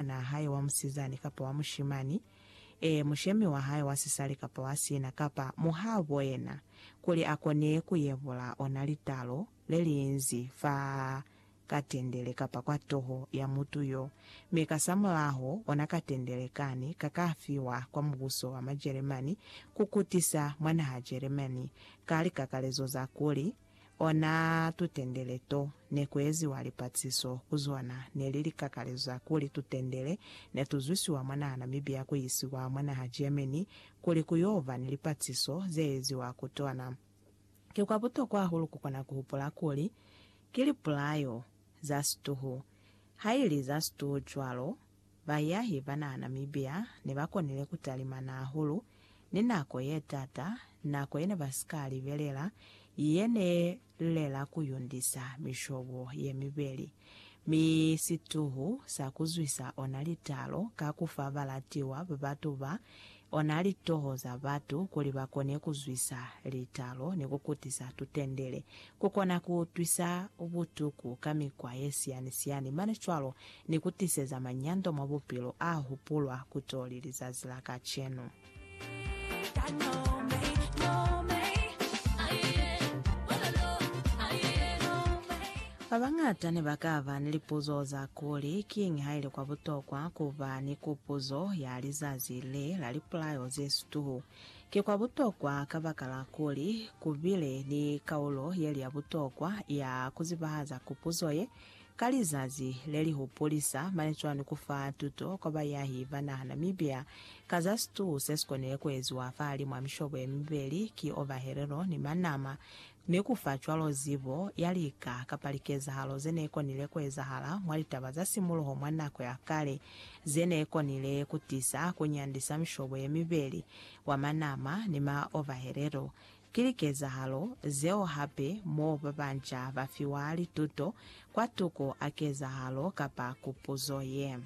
mwanaa hae wa musizani kapa wa mushimani, ee, mushemi wa hae wa sisali kapa wa sina, kapa muhaabo yena, kuli a kone ku yebula ona litalo le li inzi fa katendele kapa kwa toho ya mutu yo, mi kasamulaho ona katendele kani ka ka fiwa kwa mubuso wa Majeremani ku kutisa mwa naha Jeremani ka likakalezo za kuli, Ona tutendele to ne ku eziwa lipatiso ku zona ne li likakaleza kuli tutendele ne tu zwisiwa mwa naha Namibia ku isiwa mwa naha Germany kuli ku y'o ba ni lipatiso ze eziwa ku tona. Ki kwa butokwa hahulu ku kona ku hupula kuli ki lipulayo za situhu, ha ili za situhu cwalo, Baiyahi ba naha Namibia ne ba konile ku talimana hahulu ni nako ye t'ata, nako ye ne ba si ka libelela, ye ne lela ku yundisa mishobo ye mibeli, mi situhu sa ku zwisa ona litalo ka ku fa balatiwa ba batu ba Ona litoho za batu kuli ba kone ku zwisa litalo ni ku kutisa tutendele, ku kona ku utwisa butuku ka mikwa ye siyani-siyani mane cwalo ni ku tiseza manyando mwa bupilo a hupulwa ku to li lizazi la kacenu. Babañata ne ba ka ba ni lipuzo za kuli, Kiñi ha ili kwa butokwa ku ba ni kupuzo ya lizazi le la lipulayo ze situhu? Ki kwa butokwa kabakala kuli ku bile ni kaulo ye li ya butokwa ya ku zibahaza kupuzo ye ka lizazi le li hupulisa mane cwani ku fa tuto kwa bayahi ba naha Namibia ka za situhu se si konile ku eziwa fahalimw'a mishobo ye mibeli ki Ovaherero ni Manama Ni ku fa cwalo zibo ya lika kapa likezahalo ze ne konile ku ezahala mwa litaba za simuluho mwa nako ya kale, ze ne konile ku tisa ku nyandisa mishobo ye mibeli, wa manama ni ma ovahelelo. Ki likezahalo zeo hape mo ba banca ba fiwa lituto kwatuku a kezahalo kapa kupuzo ye.